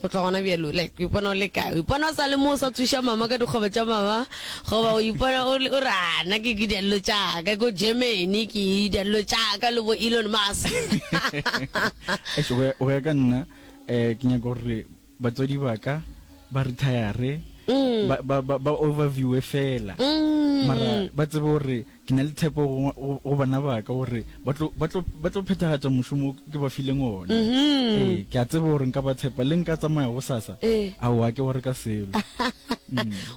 Go tloga gona bjalo, like, o ipona o le kae? O ipona o sa le mo o sa tsoša mama ka dikgobe tša mama, goba o ipona o re, ana ke ke dialelo tšaka, ko Germany ke dialelo tšaka le bo Elon Musk. Go ya ka nna, um ke nyaka gore batswadi ba ka ba retire, mm. ba overviewe fela, mm. mara ba tsebe gore Ke na le tshepo go, go, go bana ba ka gore ba tlo, ba tlo, ba tlo phethagatša mošomo wo ke ba fileng wona. Ee, ke a tseba gore nka ba tshepa. Le nka tsamaya gosasa? Ee. Ao, ga ke gore ka selo.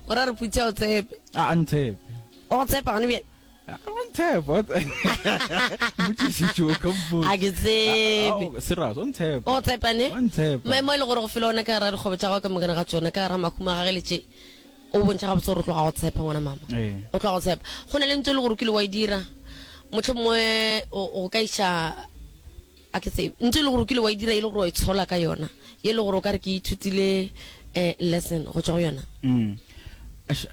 O ra re Putsi a o tshepe. A a ntshepe. O go tshepa gone bjale? A a ntshepa. o tse- Motšišitše o ka mpotsa. A ke tsebe. Ao, serious, o ntshepa. O go tshepane? O a ntshepa. Maemo e le gore go fela ona ka gara dikgobo tša gago ka mokana ga tšona, ka gara mahumo a gage le tše. O bontšha gabotse gore o tloga go tshepa, ngwana mama. Ee. O tloga go tshepa. Go na le ntho e le gore o kile wa e dira, motlho mongwe o o ka iša a ke tsebe ntho e le gore o kile wa e dira e le gore wa e tshola ka yona e le gore o ka re ke ithutile eh, lesson go tswa go yona Mm. Ash,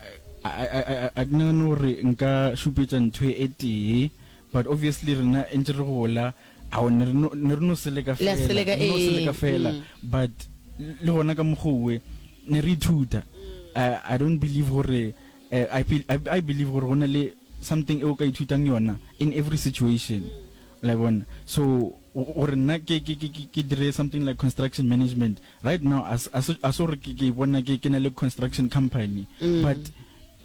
a- a- a- a- a ke nagane gore nka šupetsa ntho e tee but obviously rena e ntse re gola Ao, ne re no, ne re no se leka Le a se fela, leka, re no se ee, leka fela, mm. but le gona ka mokgowe ne re ithuta. I, I don't believe gore, eh, I, be, I, I believe gore go na le something e o ka ithutang yona in every situation. La e bona? So, go- gore nna ke, ke, ke, ke, ke dire something like construction management, right now, a se- a se a se gore ke, ke ipona ke, ke na le construction company, but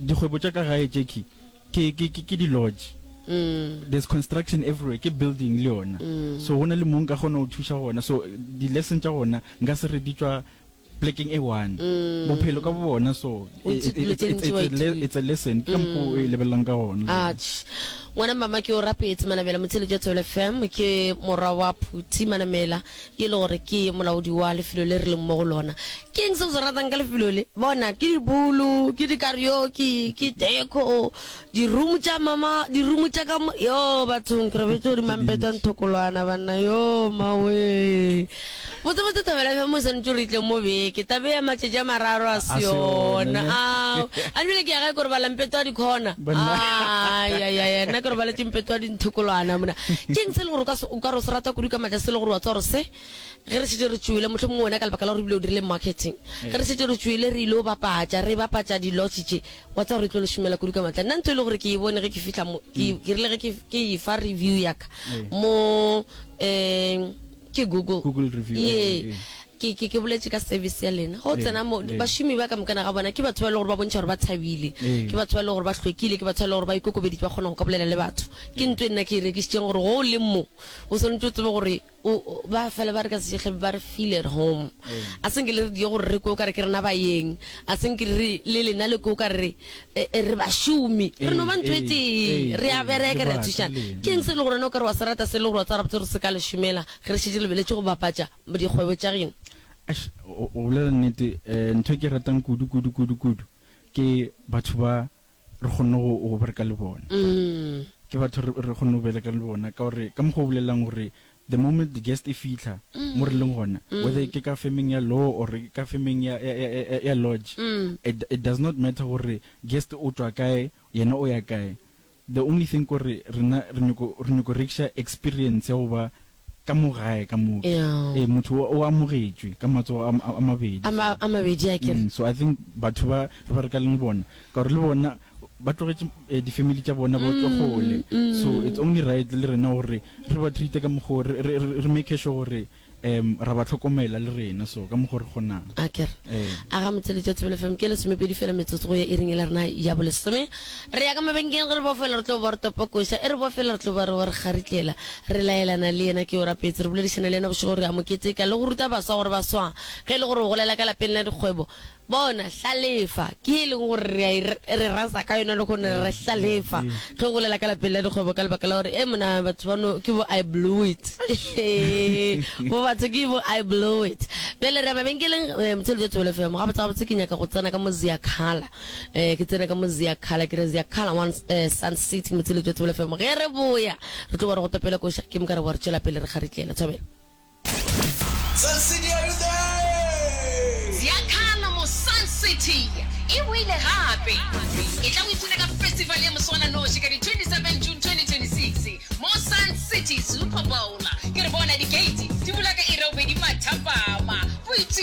dikgwebo tša ka gae tšekhwi, Ke, ke, ke, ke di lodge. There's construction everywhere, ke building le yona. So go na le mo nka kgona go thuša gona. So di lesson tša gona nka se re di tšwa plekeng e one. Bophelo ka bo bona so O itse dilo tse ntši wa it's, it's, it's, a le- ithuta. it's a lesson. Ke ka mokgwa o e lebelelang ka gona. Atš. Ngwana mama ke o rapetse Manamela Motšheletšo Tswele FM ke morwa wa Phuti Manamela Ke e le gore ke molaodi wa lefelo le re leng mo go lona. Ke eng se o se ratang ka lefelo le? Bona, ke dibulu, ke dikarioki, ke deco, dirumu tša mama, dirumu tša ka mo. Yoo, bathong, ke robetše godimo ga mpete wa nthokolwana, banna. Yoo, mmawee! Botsebotse, thobela bjang mo e swanetše gore e tle mo beke, taba ye ya matšatši a mararo ga se yona. Ao, a bjale ke ya gae, ke robala mpete wa dikhona. Banna. Ayayaya, nna ke robaletše mpete wa di. Nthokolwana mona. Ke eng se e leng gore o ka se- o ka re o se rata kudu ka matla se e leng gore wa tseba gore se ge re šetše re tšwele mohlomongwe wena ka lebaka la gore ebile o dirile marketing ge re šetše re tšwele re ile o bapatša re bapatša di-lodge tše wa tseba gore e tlo le šomela kudu ka matla nna ntho e le gore ke e bone ge ke fihla mo ke ke rile ge ke ke e fa review ya ka mo um Ke Google. Google review, ee, Yee. ee, ee. Ke, ke, ke boletše ka service ya lena. Ga o Ee, tsena mo, ee. bašomi ba ka mokana ga bona, ke batho ba e le gore ba bontšha gore ba thabile. Ee. Ke batho ba e le gore ba hlwekile, ke batho ba e le gore ba ikokobeditše, ba kgona go ka bolela le batho. Ke ntlo e nna ke e rekišitšeng gore go o leng mo, o swanetše o tsebe gore o, o, ba fela ba re ka Sešehle ba re feel at home. Ee. A se nke le re diye gore re kwe o ka re ke rena baeng, a se nke re, le lena le kwe o ka re E, e, re bašomi re no ba ntho e ee, tee ee, re a ee, bereke re re a bata thušana le- ke eng se e le gore wena o ka re wa se rata se e le gore wa tsara botse gore se ka le šomela ge re šetse re lebeletše go bapatša dikgwebo tša geno Eish, o o bolela nnete um ntho e ke e ratang kudu kudu kudu kudu ke batho ba re kgonne go go bereka le bona ke batho re re kgonne go bereka le bona ka gore ka mokgwa o bolelelang gore The moment the guest e fihla mo re leng gona, whether ke ka femeng ya law or ke ka femeng ya, ya, ya, ya, ya lodge, it, it does not matter gore guest o tšwa kae, yena o ya kae. The only thing ke gore rena re nyoko, re nyoko rekiša experience ya go ba ka mo gae ka mo. Ee, motho o, o amogetšwe ka matsogo a, a, a mabedi. A ma, a mabedi, akere? Mm, so I think batho ba re ba re ka leng bona, ka gore le bona ba tlogetše eh, difamily tša bona bo tswa gole so it's only right le rena gore re ba treate ka mokgo re- re re- re make sure gore um ra ba tlhokomela le rena so ka mokgo re kgonang a kere Eh. a ga motheletša thobelo fm ke lesomepedi fela metsotso go ya e ring e le rena ya bolesome re ya ka mabenkeng ge re bo fela re tlo ba re topokoša e re bo fela re tlo ba re wa re kgaritlela re laelana le yena ke o rapetse re boledišana le yena bošego gore a mo keteka le go ruta baswa gore baswa ge e le gore o golela ka lapeng la dikgwebo Bona, hlalefa, ke ye e lego gore re a e re rasa ka yona lehono, re re hlalefa. Tlo bolela ka lapeng la dikgwebo ka lebaka la gore, ee, mona batho bano ke bo I blew it. Bo batho ke bo I blew it. Bjale re ya mabenkeleng, eh, Motshelo Jwa Thobela FM. Gabotse-gabotse ke nyaka go tsena ka mo Ziyakhala. Eh, ke tsene ka mo Ziyakhala, ke re Ziyakhala one, eh, Sun City, Motshelo Jwa Thobela FM. Ge re boya, re tlo ba re go topele ko Shakim, ka re bo re tšwela pele re kgaritlela. Thobela. Sun City are you there? Ziakhala mo Sun City e boile gape. Etla o ipshine ka festival ya moswananoši ka di 27 June 2026 mo Sun City Super Bowl. Ke re bona di gate di bula ka iri ya bobedi mathapama. Boipshino